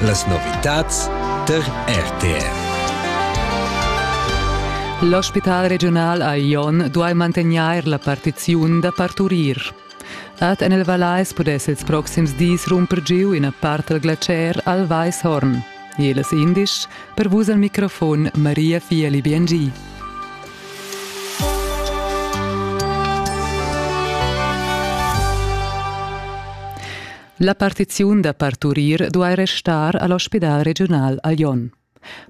Las novitads tar RTR. L'ospital regiunal a Jon duai mantegnair la partiziun da parturir. Ad en il Vallais pudess ils proxims dis rumper giu ina part dal glacier al Weishorn. Jeles indisch, per vus al microfon Maria Fieli Biengi. La partiziun da parturir duai restar a l'ospidal regiunal a Lyon.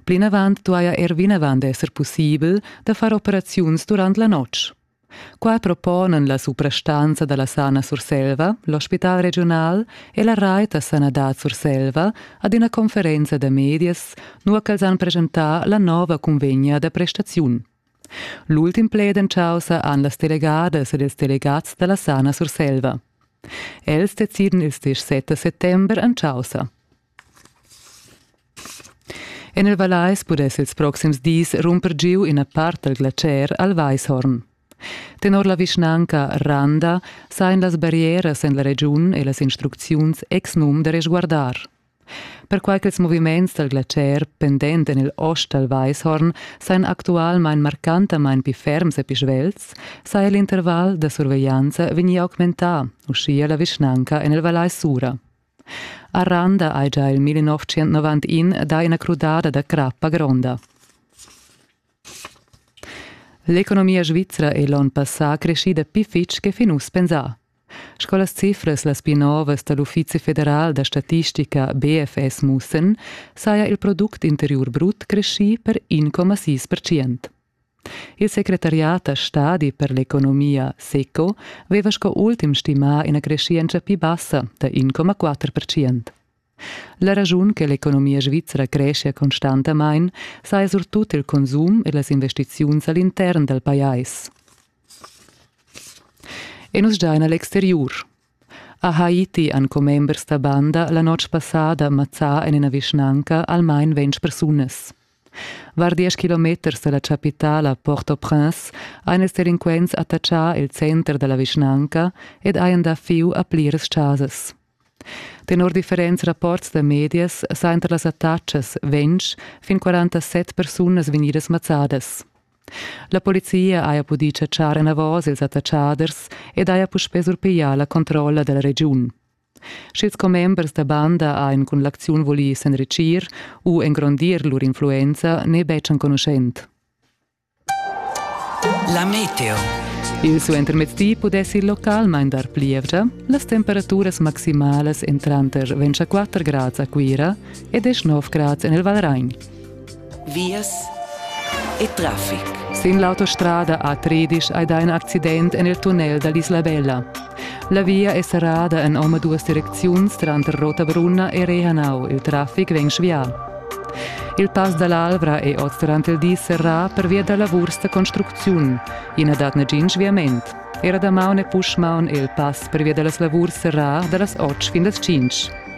Plinavant duaja er vinavant esser pussibel da far operaziuns durant la notg. Qua proponan la suprastanza da la Sana Surselva, l'ospital regiunal e la rait da sanadad Surselva ad ina conferenza da medias, nua ch'els han presentà la nova cunvegna da prestaziun. L'ultim pled en chaussa han las delegadas ed ils delegats dalla Sana Surselva. Els deciden ils dis 7 settember en chaussa. En il Vallais pudess ils proxims dis rumper giu ina part dal glacier al Weishorn. Tenor la vischnanca Randa sain las barrieras en la regiun e las instrucziuns ex num da resguardar. Perquai ch'ils moviments dal glatscher pendent en il ost dal Weishorn sajan actualmain marcantamain pli ferms e pli svelts, saja l'interval da surveglianza vegnì augmentà, uschia la vischnanca en il Vallais Sura. A Randa hai già il 1991 dà ina crudada da crappa gronda. L'economia svizra è l'onn passà creschida pli fitg che fin uss pensà. Sco las cifras las pli novas da l'Uffizi federal da statistica BFS mussan, saja il product interiur brut creschì per 1,6 percent. Il secretariat da stadi per l'economia SECO veva sco ultim stimà ina creschientscha pli bassa da 1,4 percent. La raschun che l'economia svizra creschia constantamain saja surtut il consum e las investiziuns a l'intern dal pajais. E nus giain a l'exteriur. A Haiti han commembers da banda la notg passada mazzà en ina vischnanca almain ventg persunas. Var diesch kilometers da la chapitala Port-au-Prince han ils delinquents attachà il center da la vischnanca ed hajan dà fiu a pliras chasas. Tenor differents rapports da medias sajan tar las attacas ventg fin quarantasset persunas vegnidas mazzadas. La polizia haja pudì chatschar enavos ils attachaders ed haja puspè surpiglià la controlla da la regiun. Sch'ils commembers da banda han cun l'acziun vulì s'enritschir u engrondir lur influenza n'è betg enconuschent. La meteo. Il suentermezdi pudess il localmain dar plievgia. Las temperaturas maximalas èn tranter 24 grads a Cuira e 19 grads en il Valragn. Vias e traffic. Sin l'autostrada a Tridisch hai dà in accident en il tunnel da l'Isla Bella. La via è serrada en omaduas direcziuns tranter Rotabrunna e Rehanau. Il traffic vegn svià. Il pass da l'Alvra è oz durant il di serrà pervia da lavurs da construcziun. I na dat nagin sviament. Era damaun e puschmaun è il pass pervia da las lavurs serrà da las 8 fin las 5.